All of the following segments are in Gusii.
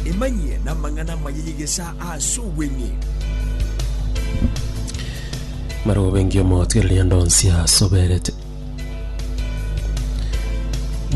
Emanyie namang'ana amaya y'egesaa ase obweng'e. Marobengi omotwereria ndonsi asoberete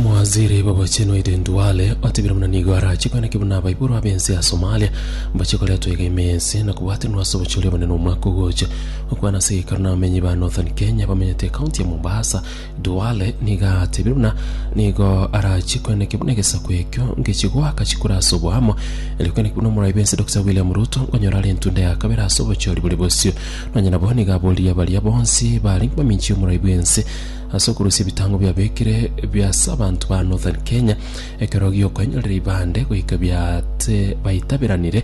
Mwaziri babochenu Aiden Duale otebire muna nigo arache kweneki buna abaiboro abense ya Somalia mbache koretwa iga ime ense na kobwatenwa ase obochori obonene omwaka ogocha okwana ase egekaro na abamenyi ba Northern Kenya bamenyete ekaunti ya Mombasa Duale nigo atebirie buna nigo arachie kweneke buna egesaku ekio ngechie goaka chikura ase oboamo, erio kweneke buna omorai bwense Dokita William Ruto nkonyora are entunda ya kabere ase obochori boria bosio. Nonye nabo nigo aboririe baria bonsi barenge baminchi y'omorai bwense ase okorusia ebitango biabekire bia ase abanto ba Northern Kenya ekero giokoenyorera ibande goika biate baitaberanire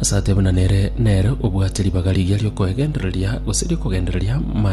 Ase atebana nere, nere obwate ribaga riria ri'okoegendereria, gose ri'okogendereria maro.